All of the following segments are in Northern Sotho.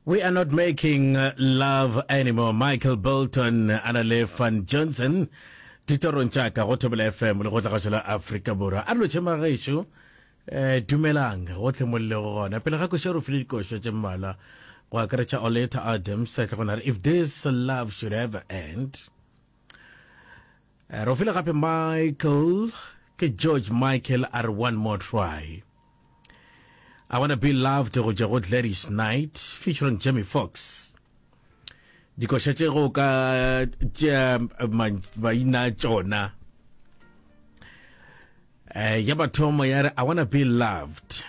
We are not making uh, love anymore. Michael Bolton, Anale Van Johnson. Titorong tša ka go thobela fm le go tla gašo la afrika borwa a dilo tšhema gešo um eh, dumelang gotlhe molelo go gona pele ga košo re file dikošo tše mmalwa go akaretša oleta adams tle go na re if this love should ever end Re o file gape Michael, ke George Michael a re one more try. I wanna be loved go tšwa go Gladys Knight featuring Jamie Foxx. Dikoša tše go ka tšea ma- maina a tšona. Eh, ya mathomo ya re I wanna be loved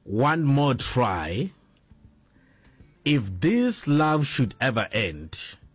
one more try if this love should ever end.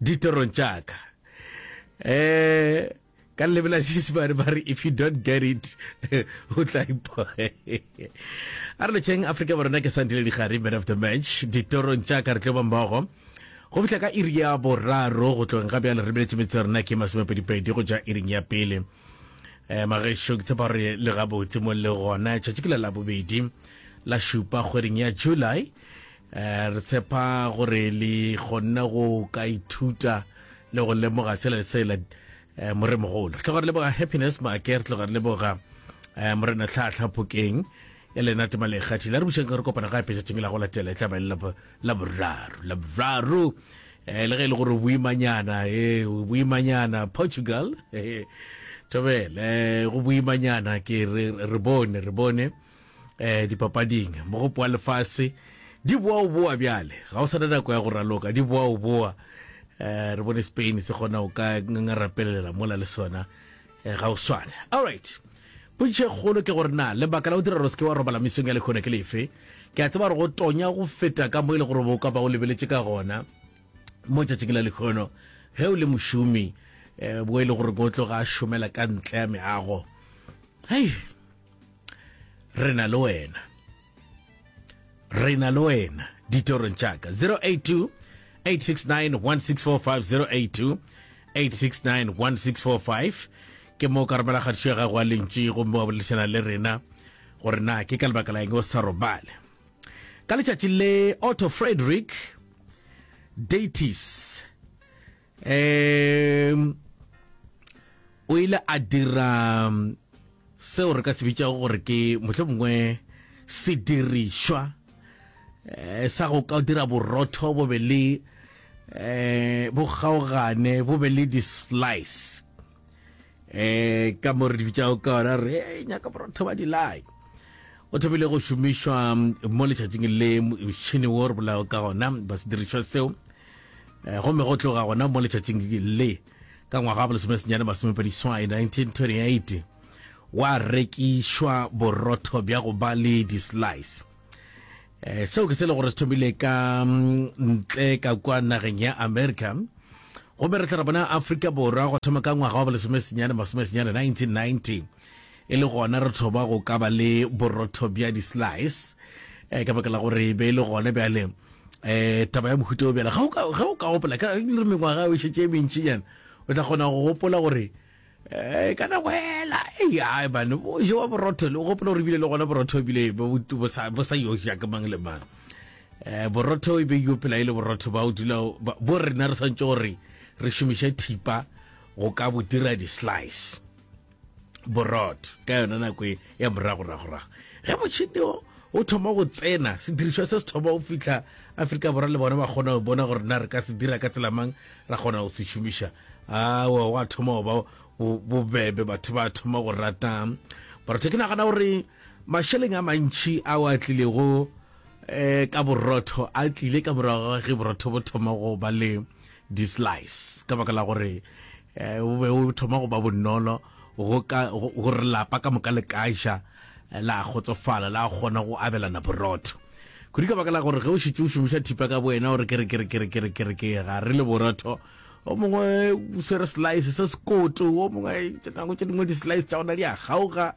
Ditorong tša ka. Eh, ka lebe la Seesimane ba re if you don't get it, o tla ipo. A re letšeng Afrika Borona ke Sandile Digari, man of the match. Ditorong tša ka re tlo ba mmogo. Go fihla ka iri ya boraro go tlong ga bjale re beletše metse ya rona ke masomepedipedi go ja iring ya pele um magešo ke tshepa gore le gabotse mo le gona tšatši ke la labobedi la šupa kgweding ya july Re tshepa gore le kgonne go ka ithuta le go lemoga sela le sela moremogolo. Re tloga re leboga Happiness Make, re tloga re leboga morena Tlhaatlha Phokeng e lena tema le kgathi la re bušeng ka re kopana ga epetšatšeng la go latela e tlabe le la boraro la boraro um le ge e le gore boimanyana e boimanyana portugal tobele go boimanyana ke re bone re bone eh dipapading mo go poa lefase di boa o boa bjale ga o sana nako ya go raloka di boa o boa eh re bone spain se gona o ka ngangarapelela mola le sona eh, ga o swane all right potšišo e kgolo ke gore na lebaka la go dira gore se ke wa robala mesong ya lekgone ke lefe ke a tseba gore go tonya go feta ka mo e le gore bo ka ba o lebeletše ka gona mo tšatšing la lekgono ge o le mošomi um bo e le gore ko tloga a šomela ka ntle ya meago hei re na le wena re na le wena ditorong tšaka 082 869 1645 082 869 1645 ke mo ka romela kgatišo ya gago a lentši gomme wa boledišana le rena gore na ke ka lebaka la eng o sa robale ka letšatši le otto frederick datis um o ile a dira um, seo re ka se bitšago gore ke motlho mongwe sedirišwa um sa go ka dira borotho bo be le um bo kgaogane bo be le di-slice um ka mo re di bitšago ka ona re e nyaka borotho ba dilai o thomile go šomišwa mo letšatšing le motšhini wo re bolago ka gona ba se dirišwa seo eh, gomme go tloga gona mo letšatšing le ka ngwaga wa bolesomesenyane masomepediswai 1928 wa rekišwa borotho bja go ba le dislice um Eh, seo ke se le gore se thomile ka ntle ka kwa nageng ya america gomme re tla re bona aforika borwa go thoma ka ngwaga wa bolesomesenyane masomesenyane 1990 e le gona re thoba go ka ba le borotho bja di-slice um ka baka la gore e be e le gone bjale um taba ya mohuta o bjale ge o ka gopola ka re mengwaga o šetse e mentšinyana o tla kgona go gopola gore Eh, e kana boela eai mane o jewa borotho le o gopola gore ebile le gona borotho ebile bo sa yoja ke mang le mang um borotho e be yo pela e le borotho ba o dula bo rena re swantse gore re šomiše thipa go ka bo dira di-slice borotho ka yona nako e ya moragoragorago ge motšhini o o thoma go tsena sedirišwa se se thoma go fitlha aforika borwa le bona ba kgona go bona gore na re ka se dira ka tselamang Ra kgona go se šomiša. Aowa, gwa thoma go ba bo, bobebe. Batho ba thoma go rata borotho. Ke nagana gore mašeleng a mantši ao a tlilego eh, ka borotho a tlile ka morago ga ge borotho bo thoma go ba le di-slice ka baka la gore eh, bo be bo thoma go ba bonolo go ka gore lapa ka moka le ka ja la kgotsofala la kgona go abelana borotho kudu ka baka la gore ge o šitse o šomiša thipa ka boena gore kere kere kere kere kere ke ga re le borotho o mongwe o swere slice se sekoto o mongwe nako tse dingwe di-slice tša gona di a gauga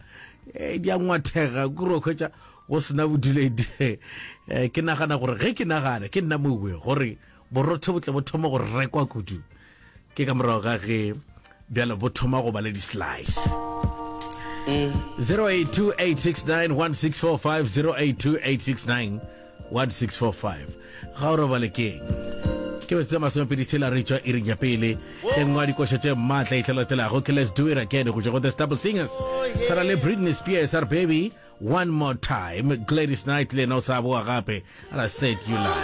eh, di a ngwathega kuro kgwetša go sena boduledi eh, ke nagana gore ge ke nagana ke nna mowe gore borotho bo tle bo thoma go rekwa kudu ke ka morago ga ge bjalo bo thoma go ba le di-slice 0828691645 ga o robale keng ke bese masomepedi tshela re tšwa iring ya pele ke nngwe ya dikoša tše maatla e tlalatelago ke let's do it again go tšwa go the stable singers tshwana le britney spears our baby one more time gladys knight le yena o sa boa gape and i said you lie